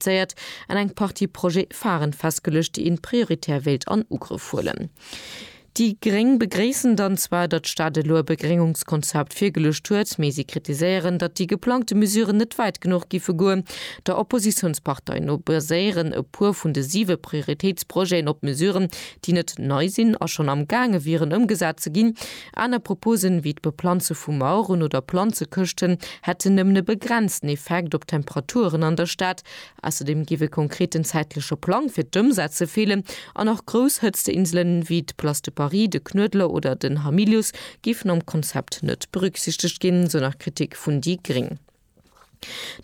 identifizéiert an eng Partie Projet-phare'n festgeluecht, déi een prioritär wéilt an Ugrëff huelen. Déi Gréng begréissen dann zwar, datt d'Stad elo e Begréngungskonzept virgeluecht huet, mee si kritiséieren, datt déi geplangte Mesuren net wäit genuch giffe goen. Der Oppositiounspartei no baséieren e puer vun de siwe Prioritéitsprojeten op Mesuren, déi net nei sinn a schonn am gaange wieren ëmgesat ze ginn. Aner Proposen, wéi d'Beplanze vu Maueren oder Planzekëschten, hätten nëmmen e begrenzten Effekt op d'Temperaturen an der Stad. Ausserdeem géif e konkreten zäitleche Plang fir d'Ëmsetze feelen an och grouss Hëtzteinselen, wéi d'Place de Paris, de Knuedler oder den Hamilius, géifen am Konzept net berücksichtegt ginn, esou nach d'Kritik vun déi gréng.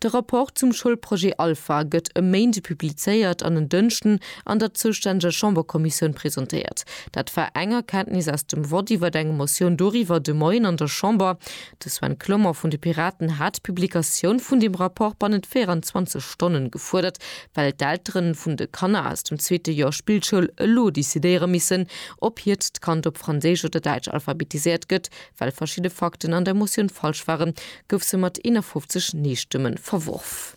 De Rapport zum Schoulprojet Alpha gëtt e Méinde publizéiert an en Dënschden an der zoustänneger Chamberkommissioun presentéiert. Dat war eng Erkenntnis aus dem Vott iwwer eng Motioun doriwwer de Moien an der Chamber. De Sven Clement vun de Piraten hat d'Publikatioun vun deem Rapport bannent 24 Stonnen gefuerdert, well d'Eltere vun de Kanner aus dem zweete Joer Spillschoul elo decidéiere missen, ob hiert d'Kand op Franséisch oder Däitsch alphabetiséiert gëtt, Well verschidde Fakten an der Motioun falsch waren, gouf se mat 51 Nee-Stëmme verworf.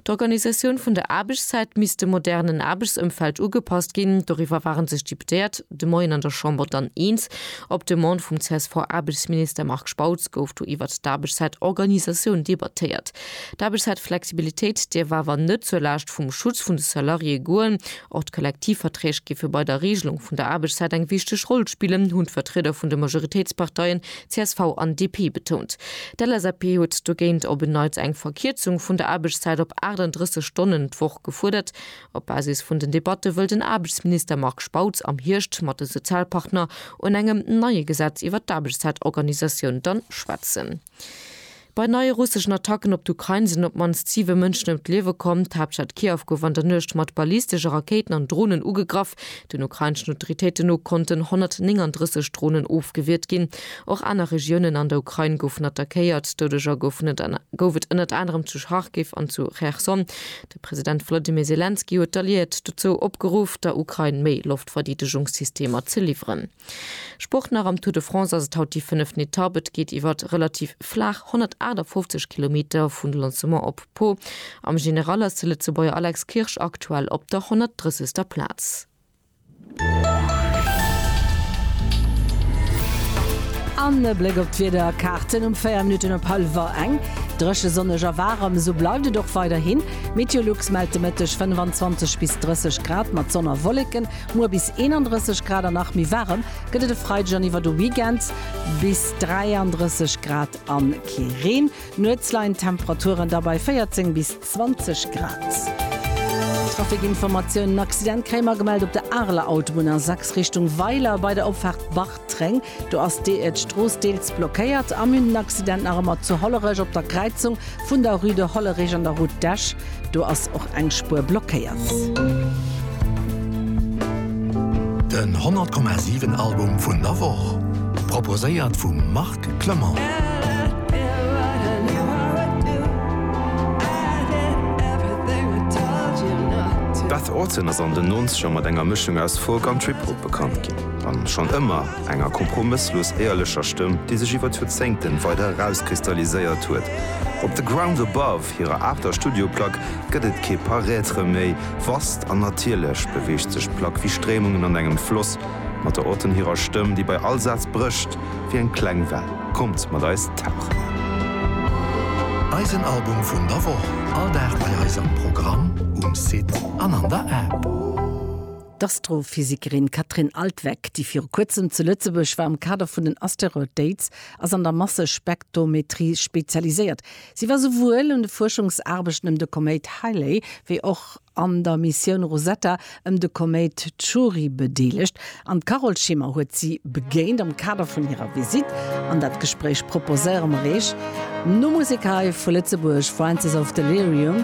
D'Organisatioun vun der Aarbechtszäit misst dem modernen Aarbechtsëmfeld ugepasst ginn. Doriwwer waren sech d'Deputéiert de Moien an der Chamber dann eens. Op Demande vum CSV-Aarbechtsminister Marc Spautz gouf do iwwert d'Aarbechtszäitorganisatioun debattéiert. D'Aarbechtszäitflexibilitéit dierf awer net zur Laascht vum Schutz vun de Salariéë goen, Och d'Kollektivverträg géife bei der Regelung vun der Aarbechtszäit eng wichteg Roll spillen, hunn d'Vertrieder vun de Majoritéitsparteien csv an DP betount. D'LSAP huet dogéint op en Neits eng Verkierzung vun der Aarbechtszäit op 38 Stonnen d'Woch gefuerdert. Op Basis vun den Debatte wëll den Aarbechtsminister Marc Spautz am Hierscht mat de Sozialpartner un engem neie Gesetz iwwer d'Aarbechtszäitorganisatioun dann schwätzen. Bei neie russeschen Attacken op d'Ukrain sinn op d'mannst siwe Mënschen ëm d'Liewe komm. D'Haaptstad Kiew gouf an der Nuecht mat ballistesche Rakéiten an Dronen ugegraff. Den ukraineschen Autoritéiten no konnten 139 Dronen ofgewiert ginn. Och aner Regiounen an der Ukrain goufen attackéiert. Doudeger gouf et ënnert anerem zu Charkiw an zu Cherson. De President Wolodymyr Selenskyj huet d'Alliéiert dozou opgeruff, der Ukrain méi Loftverdeedegungssystemer ze liwweren. Sport nach Am Tour de France ass et haut déi fënneften Etapp. Et geet iwwer relativ flaach 158 Kilometer vun Lancement op Pau. Am General ass de Lëtzebuerger Alex Kirsch aktuell op der 130. Plaz. An e Bléck op d'Wiederkaarten um 4 Minutten op hallwer eng. Dréche, sonneg a waarem, esou bleift et och weiderhin. Meteolux mellt de Mëtteg 25 bis 30 Grad mat Sonn a Wolleken. Muer bis 31 Grad a nach méi waarem gëtt et e Freideg an iwwer de Weekend, bis 33 Grad a kee Reen. Nuets leien d'Temperaturen da bei 14 bis 20 Grad. Trafikinformatiounen, Accident kréie mer gemellt op der Areler Autobunn A6 Richtung Weiler bei der Opfaart Bartreng. Tréng, do ass de d'Strooss deels blockéiert a mir hunn den Accident nach ëmmer zu Hollerech op der Kräizung vun der Rue de Hollerich an der Route d'Esch, do ass och eng Spuer blockéiert. Den 100 Komma 7 Album vun der Woch proposéiert vum Marc Clement. D'Beth Orton ass an den Nonzeger mat enger Mëschung aus Folk an Trip-Hop bekannt ginn. An schonn ëmmer enger kompromësslos éierlecher Stëmm, déi sech iwwer d'Joerzéngten weider erauskristalliséiert huet. Op The Ground Above, hirer aachter Studioplack, gëtt et kee Paraître méi. Vast an natierlech beweegt sech d'Plack wéi Stréimungen an engem Floss, mat der Auton hirer Stëmm, déi bei all Saz brécht wéi eng kleng Well. Kommt mat eis tauchen! Eisen Album vun der Woch, all Dag bei eis am Programm, um Site an an der App. D'Astrophysikerin Katrin Altwegg, déi viru kuerzem zu Lëtzebuerg war am Kader vun den Asteroid Dates, ass an der Massespektometrie spezialiséiert. Si war souwuel un de Fuerschungsaarbechten ëm de Koméit Halley wéi och an der Missioun Rosetta ëm de Koméit Chury bedeelegt an d'Carole Schimmer huet si begéint am Kader vun hirer Visitt. An dat Gespréich proposéiere mer Iech no Musek hei vu Lëtzebuerg, Francis of Delirium,